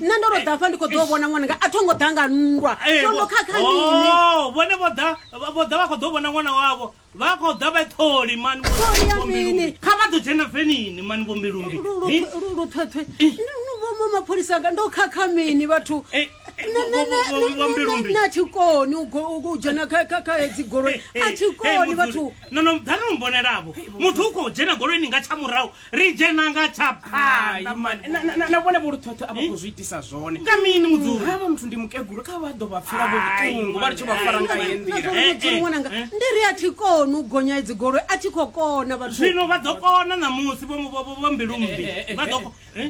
nṋe ndo ro ḓa fha ndi kho ḓo vhona ṅwananga a thongo ḓa nga nndwa tondo khakha mini oh, vhone vho ḓa vho ḓa vha kho ḓo vhona ṅwana wavho vha kho ḓa vha tholi mani mini kha vha ḓo dzhena venini mani vho mbilumbi luṱhweṱhwe vho mapholisa nga ndo khakha mini vhathu na thikoni u dzhena kha hedzi goloi a thikoni vhathu no no ḓa no mbonelavo muthu u khou dzhena goloini nga tsha murahu ri dzhena nga tsha phanḓa mani Na- na- na- na vhone vholuthotho a vha khou zwi itisa zwone nga mini mudzuri havha muthu ndi mukegulu kha vha ḓo vha pfela Ai, vhoṱungu vha ri tsho vha fara nga ye nḓila Eh, eh, Mudzimu ṅwananga, eh. ndi ri a thi koni u gonya idzi goloi a thi khou kona vhathu zwino vha ḓo kona ṋamusi vho- vho- vho- vho mbilumbi vha ḓo ko- eh?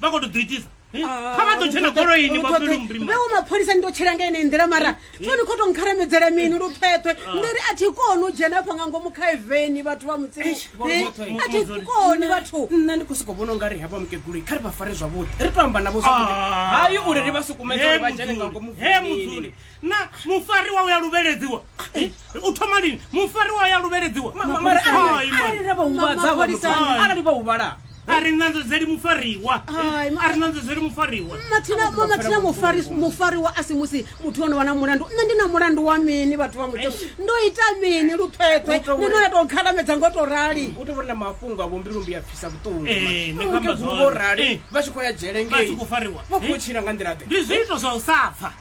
vha khou to ḓo itisa eh? ah, kha vha ḓo tshena goloini vhaewo mapholisa ni to tshela nga ene nḓila mara eh? tsho ni khou to nkharamedzela mini lu phethwe ah. ndi ri a thi koni u dzhena afha nga ngomu kha eveni vhathu vha mutsini eh, a thi koni vhathu nṋe ndi khou sokou vhona u nga ri havha mukegulu kha ri vha fare zwavhuḓi ri to amba navho zwavhuḓi ah. hayi uri ri vha sukumedza uri vha dzhene nga ngomu he mudzuli na mufariwa uya luvheledziwa u thoma lini mufariwa uya luvheledziwa arali vha huvhala a ri nanzo dzeli mufariwa a ri nanzo dzeli mufariwa mathina mufariwa a si musi muthu ono vha na mulandu nṋe ndi na mulandu wa mini vhathu vha muthu ndo ita mini luphethwe ni no ya tou khalamedza ngo to rali u tovhori na mafhungo a vhombi lumbi ya pfisa vhuṱunguvo rali vha tshi khou ya dzhele ngei vha khou tshila nga nḓila ḓe ndi zwiito zwa u sa pfa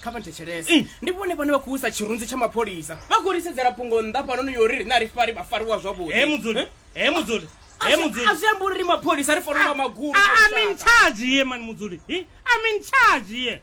kha vha thetshelese eh. ndi vhone vhane vha khou usa tshirunzi tsha mapholisa vha khou risedzela phungo nnḓa fhanoni yo ri rine a ri fari vha fariwa zwavhuḓi he mudzuli eh? he mudzuli azwi ambi uri ri mapholisa ri fanela ah, ah, magulu ah, amin charge ye mani mudzuli amin charge ye